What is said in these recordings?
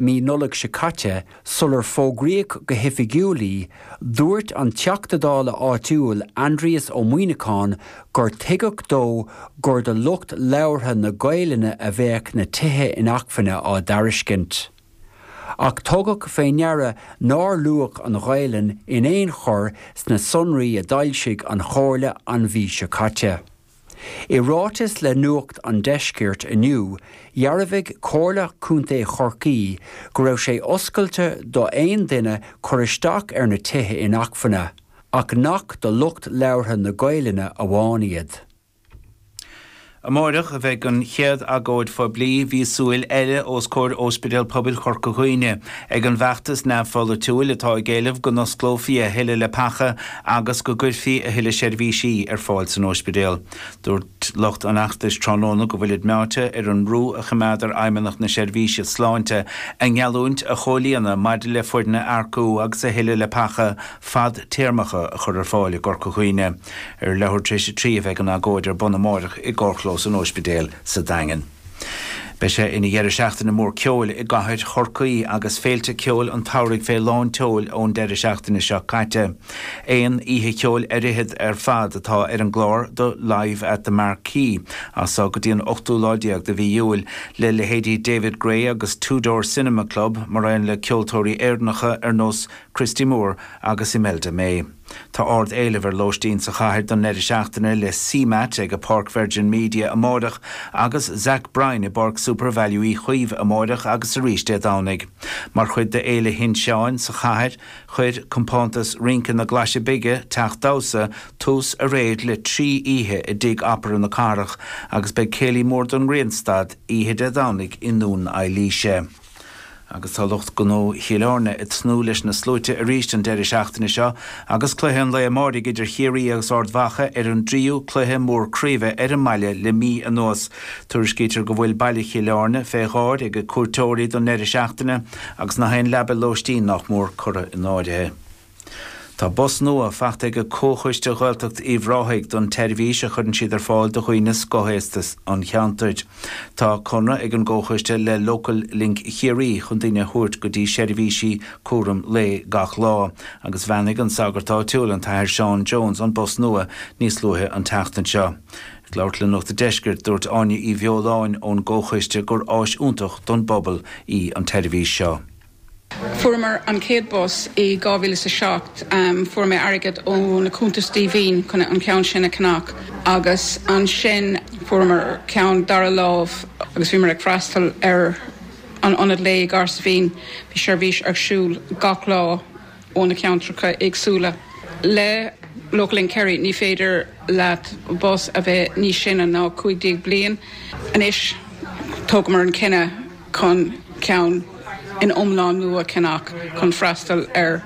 Mí Nollag seo caite, sular fógraíodh go hoifigiúil í, dúirt an Teachta Dála áitiúil Aindrias Ó Muíneacháin gur tuigeadh dó gur do lucht labhartha na Gaelainne a bheadh na tithe inacmhainne á dtairiscint. Ach tugadh fé ndeara nár luadh an Ghaelainn in aon chor sna sonraí a d'fhoilsigh an Chomhairle an mhí seo caite. I ráiteas le Nuacht an Deiscirt inniu, dhearbhaigh Comhairle Contae Chorcaí go raibh sé oscailte d'aon duine cur isteach ar na tithe inacmhainne, ach nach do lucht labhartha na Gaoluinne amháin iad. Amárach a bheidh an chéad agóid phoiblí mhíosúil eile os comhair Ospidéal Pobail Chorca Dhuibhne, ag an bhfeachtas neamh-pholaitiúil atá ag éileamh go n-osclófaí a thuilleadh leapacha agus go gcuirfí a thuilleadh seirbhísí ar fáil san óispidéal. Dúirt lucht an fheachtais tráthnóna go bhfuilid meáite ar an mbrú a choimeád ar Fheidhmeannacht na Seirbhíse Sláinte a ngeallúint a chomhlíonadh maidir le foireann a earcú agus a thuilleadh leapacha fadtéarmacha a chur ar fáil i gCorca Dhuibhne. Ar leathuair tar éis a trí a bheidh an agóid ar bun amárach i gcarrchlós an óispidéil sa Daingean. Beidh sé ina dheireadh seachtaine mór ceoil i gcathair Chorcaí agus féilte ceoil an tsamhraidh fé lán tseoil ón deireadh seachtaine seo caite. Aon oíche cheoil ar fhichead ar fad atá ar an gclár do Live at the Marquee as so go dtí an ochtú lá déag de mhí Iúil, le leithéidí David Gray agus Two Door Cinema Club mar aon le ceoltóirí Éireannacha ar nós Christy Moore agus Imelda May. Tá ard éileamh ar lóistín sa chathair don ndeireadh seachtaine le CMAT ag Páirc Virgin Media amáireach agus Zach Bryan i bPáirc Supervalu Uí Chaoimh amáireach agus arís Dé Domhnaigh. Mar chuid de Fhéile Shin Seáin sa chathair chuir Compántas Rince na Glaise Bige, Teach Damhsa, tús aréir le trí oíche i dTigh Opera na cathrach agus beidh Céilí Mór don nGrianstad oíche Dé Domhnaigh i nDún Eilíse. Agus tá lucht gnó Chill Airne ag tnúth leis na sluaite arís an deireadh seachtaine seo agus cluiche an lae amáirigh idir Chiarraí agus Ard Mhacha ar an dtríú cluiche mór craoibhe ar an mbaile le mí anuas. Tuairiscítear go bhfuil Baile Chill Airne fé dháir ag cuairteoirí don ndeireadh seachtaine agus nach aon leaba lóistín nach mór curtha in áirithe. Tá bus nua faighte ag Comhchoiste Ghaeltacht Uíbh Ráthaigh don tseirbhís a chuireann siad ar fáil do dhaoine scothaosta an cheantair. Tá conradh ag an gComhchoiste le Local Link Chiarraí chun daoine a thabhairt go dtí seirbhísí cúraim lae gach lá, agus bheannaigh an sagart áitiúil, an tAthair Seán Jones, an bus nua níos luaithe an tseachtain seo. Ag labhairt le Nuacht an Deiscirt, dúirt Áine Uí Bheoláin ón gComhchoiste gur áis iontach don bpobal í an tseirbhís seo. Fuaireamar an chéad bus i 2007. Fuair mé airgead ó na Cuntais Díbhinn chun an ceann sin a cheannach agus ansin fuaireamar ceann dara lámh agus bhíomar ag freastal ar an ionad lae i gCathair Saidhbhín. Bhí seirbhís ar siúl gach lá ó na ceantracha éagsúla. Le Local Link Kerry ní féidir leat bus a bheith níos sine ná 15 bliain. Anois thógamar an cinneadh chun ceann iomlán nua a cheannach chun freastal ar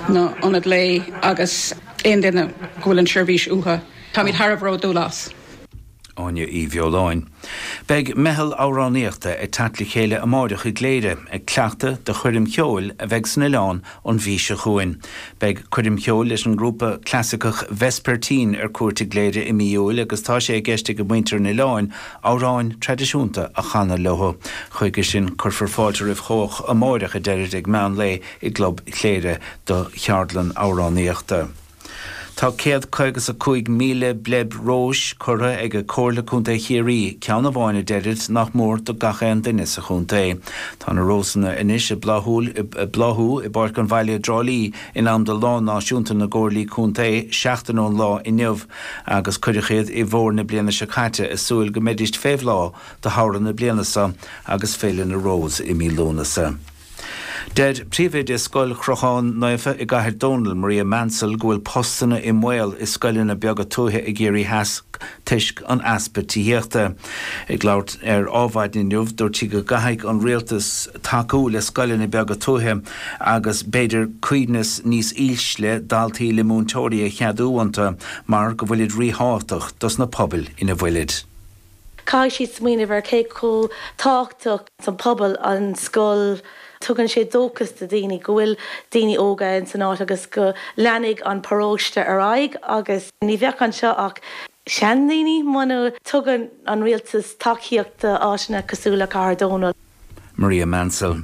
na hionaid lae agus aon duine go bhfuil an seirbhís uatha. Táimid thar a bheith bródúil as. Áine Uí Bheoláin. Beidh Meitheal Amhránaíochta ag teacht le chéile amáireach i gCléire ag cleachtadh do choirm cheoil a bheidh san oileán an mhí seo chugainn. Beidh coirm cheoil leis an ngrúpa clasaiceach Vespertine ar cuairt i gCléire i mí Iúil agus tá sé i gceist ag muintir an oileáin amhráin traidisiúnta a chanadh leo. Chuige sin, cuirfear fáilte roimh chách amáireach a deirid ag meán lae i gClub Chléire do cheardlann amhránaíochta. Tá céad caoga is a cúig míle bleib róis curtha ag Comhairle Contae Chiarraí, ceann amháin a deirid nach mór do gach aon duine sa chontae. Tá na rósanna anois ag bláthú i bPáirc an Bhaile i dTrá Lí in am do Lá Náisiúnta na gComhairlí Contae, seachtain ón lá inniu. agus cuireadh iad i bhfómhar na bliana seo caite i súil go mbeidíst fé bhláth do shamhradh na bliana so agus Féile na Róise i mí Lúnasa. Deir príomhoide Scoil Chrócháin Naofa i gCathair Dónall, Maria Mansell, go bhfuil postanna i mbaol i scoileanna beaga tuaithe i gCiarraí Theas toisc an easpa tithíochta. Ag labhairt ar Adhmhaidin inniu, dúirt sí go gcaithfidh an Rialtas tacú le scoileanna beaga tuaithe, agus b'fhéidir coibhneas níos ísle daltaí le múinteoirí a cheadú iontu mar go bhfuilid ríthábhachtach dos na pobail ina bhfuilid. Caithfidh siad smaoineamh ar cé chomh tábhachtach san pobal an scoil. Tugann sé dóchas do daoine go bhfuil daoine óga ins an áit agus go leanfaidh an paróiste ar aghaidh agus ní bheadh anseo ach seandaoine muna dtugann an rialtas tacaíocht do áiteanna cosúil le Cathair Dónall. Maria Mansell.